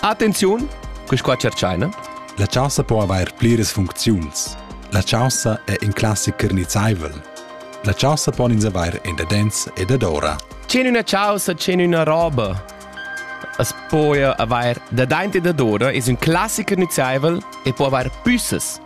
Attenziun, quis qua cerchaina. La chaussa po avair pliras funcziuns. La chaussa è in classic carnizzaivel. La chaussa pon ins avair in dadens e dadora. C'è una chaussa, c'è una roba. Es po avair dadaint e dadora, es un classic carnizzaivel e po avair püssas.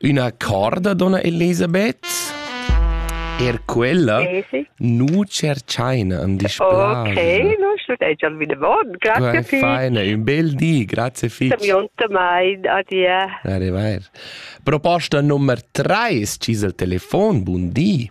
Üna corda, donna Elisabeth? Er quella eh, sì. nu cerchaina an display. Ok, nu studegia al vide bon. Grazie Pi. Feine, un bel di, grazie fitch. Samionta mai, adia. Arrivair. Proposta nummer 3, cis al telefon, bun di.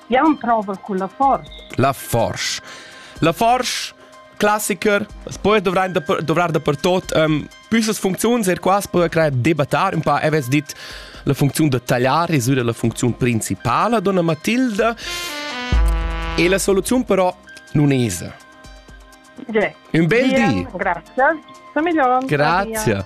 Jau emprovel cun la forsch. La forsch. La forsch classicher, as poi dovrar da pertot um, püssas funcziuns er qua poi crear debattar un po avess dit la funziun da tagliare es la funziun principala donna Matilda e la soluzione però non es. Un bel di. Grazie. Sono migliore. Grazie.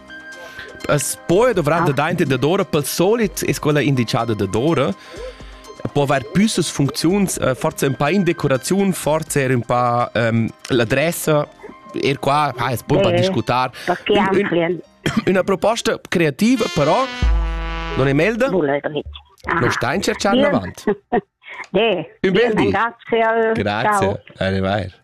As poi dovrà da dainter dadora pel solit es quella indichada dadora può avair püssas funcziuns, äh, forse un pa in decoraziun, forse er un pa ähm, l'adressa, er qua ah, es poi un pa discutar. Un, un, una proposta creativa però non è melda? Non sta in cerciare avanti. Un bel di. Grazie. Grazie. Arrivederci.